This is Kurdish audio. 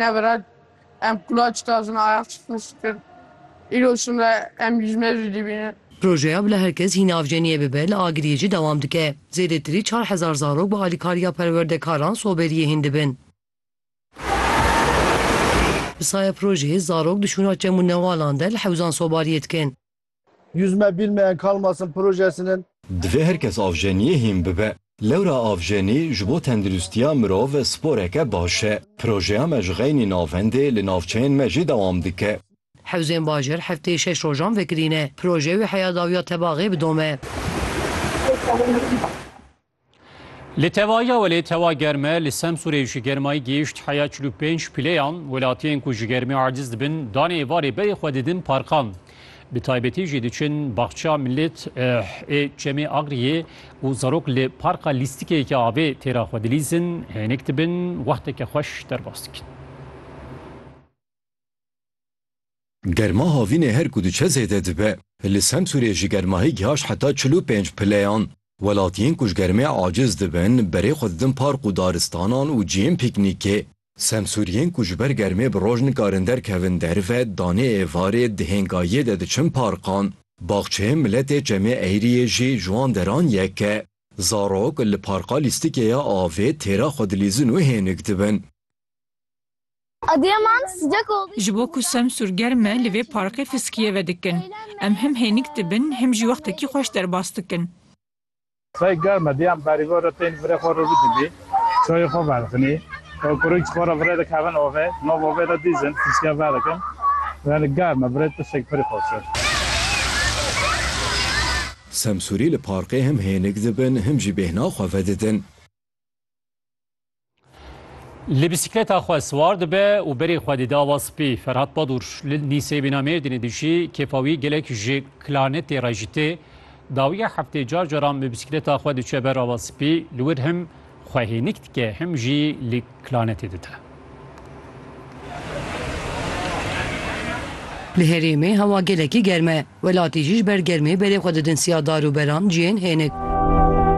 Teverat em qulaç dazin ayaq çixin şikir. Îro şimre em lijme jî dîbînin. Projeya Bila Herkes Hîn Avceniye Bibe li Agiriyê jî dewam dike. Zêdetirî çar hezar zarok bi alîkariya perwerdekaran soberiyê hîn dibin. Bi saya projeyê zarok di şûna çem û newalan de li hewzan sobariyê dikin. Yüz me bilmeyen kalmasın projesinin. Divê her kes avjeniyê hîn bibe. Lewra avjenî ji bo tenduristiya mirov sporeke baş e. Projeya me ji xeynî navendê li navçeyên me jî dewam dike. Hewzên bajir hefteyê şeş rojan vekirîne. Proje wê heya dawiya Tebaxê bidome. Li tevaya welê tewa germe li Semsûrê ji germayî gihîşt heya çil û pênc pileyan, welatiyên ku ji germê aciz dibin danê êvarê berê xwe didin parkan. Bi taybetî jî diçin Baxça Millet ê Çemê Agriyê û zarok li parka lîstikeyeke avê tê re xwe dilîzin, hênik dibin, wexteke xweş derbas dikin. Germa havînê her ku diçe zêde dibe. Li Semsûrê jî germahî gihajt heta çil û pênc pileyan. Welatiyên ku ji germê aciz dibin, berê xwe didin park û daristanan û cihên pîknîkê. Semsûriyên ku ji ber germê bi roj nikarin derkevin derve, danê êvarê dihên gayiyê de diçin parkan. Baxçeyên miletê Çemê Eyriyê jî ji wan deran yek e. Zarok li parka lîstikê ya avê têra xwe dilîzin û hênik dibin. Adıyaman sıcak olduğu için Ji bo ku Semsûr germ e li vê parkê fiskiyê vedikin. Em him hênik dibin him jî wextekî xweş derbas dikin. Sey germ e diyan berî bo re tên virê xwe re rû dibî, çayê xwe vedixinî, kurî ji xwe re virê dikevin ovê, nav ovê de dîzin fiskiya vedikin. Yanî germ e virê tiştek pirî xweş e. Semsûrî li parkê him hênik dibin him jî bêhna xwe vedidin. Li bisikleta xwe siwar dibe û berê xwe dide ava spî. Ferhat Badur li Nîsê bîna Mêrdînê dijî, kêfa wî gelek ji klanetê re jî tê. Dawiya heftê car caran bi bisikleta xwe diçe ber ava spî, li wir him xwe hênik dike him jî li klanetê dide. Li herêmê hewa gelekî germ e. Welatî jî ji ber germê berê xwe didin siya dar û beran cihên hênik.